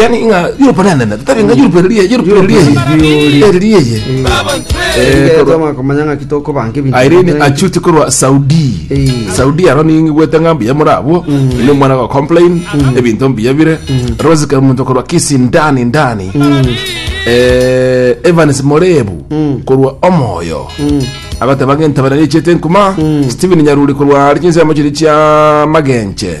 yani ng'a Europe nene nene tari ng'a Europe eri Europe eri eri eri Tomakomanya ng'aki tokobanga ebinto. Irene achuti korwa Saudi Eh. Saudi aro ningigwete ng'a mbuya muri abwo ni omwana go complain ebinto mbuya bire Rose Kamuntu korwa Kisii ndani ndani Eh, Evans Morebu korwa Omoyo agateba ng'entabana nechete nkuma Stephen Nyaruri korwa Argentina mochiri chia Magenche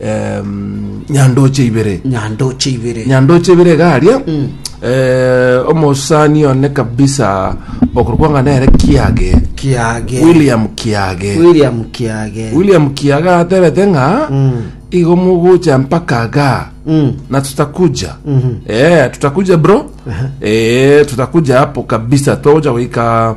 em, nyandoche ibere nyandoche ibere nyandoche ibere iga aria eh, omosani one kabisa okorokwa nere kiage kiage william kiage william kiage william kiaga atebete ng'a Mm. igo mogocha mpaka ga Mm. na tutakuja eh, tutakuja bro eh, tutakuja hapo kabisa twagocha goika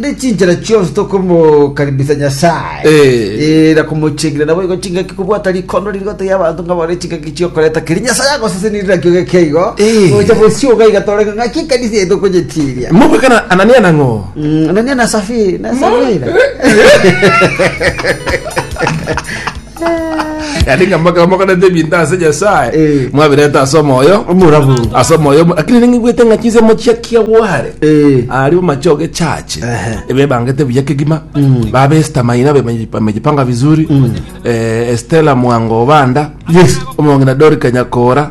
ne chinchera chionsi tokomokaribisa nyasaye Eh. Eh, na komochengera nabo igo chingaki kobwata rikondo ririgote ya abanto ngabo ne chingaki chiokoreta keri nyasaye agoseseni rirakio geke igo Eh. gocha bosioga igatoreka ng'aki ekanisa yetu okonyetiria moko kana anania nang'o Mm, anania na safiri na safira yaani ng'a moka- mokorete ebinto ase nyasaye Eh. mwabirete ase omoyo Omorabu. ase omoyo omo- lakini ningigwete ng'a chinsemo chia kiagware Eh. ari omacho gechache Ehe. ebebangete buya kegima babesta maina bemeji- bamejipanga vizuri Eh, estela mwango obanda Yes. omong'ina dori kanyakora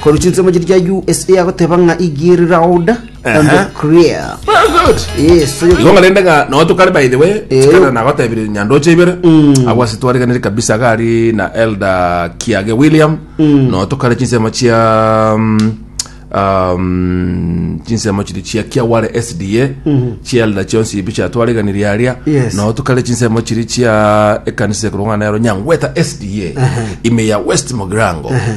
Korwa chinsemo chiria chia USA agoteba ng'a he gear loud and Aha. clear. Very good. Yes, so you- Igo ng'arende ng'a no tokare by the way Eh. chikana nagotebire nyandoche ibere abo ase twariganire kabisa gari na elder kiage william no tokare chinsemo chia mm, um, chinsemo chiri chia kiaware sda chia elder chionsi ibi chia twariganirie aria Yes. no tokare chinsemo chiri chia ekanisa ekorong'a nero nyangweta sda ime ya west mogirango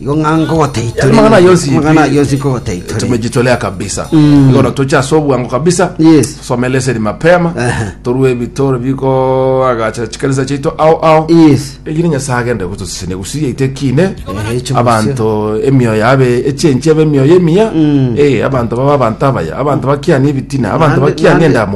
Igo ng'a nkogotaitorera. Amang'ana ayio yonsi Amang'ana ayio yonsi nkogotaitorera. tumejitolea kabisa Mm. igo natoche ase obwango kabisa Yes. some leseni mapema Ehe. torue ebitoro biko agacha chikanisa chiaito ao ao Yes. egire nyasaye agende gotosisenia gusi yaito ekine Ehe, echo abanto emioyo yabe echenchi ebe emioyo emiya Mm. Eh, abanto baba abanto abaya abanto bakiani ebitina abanto Naende- bakiani naende- endamu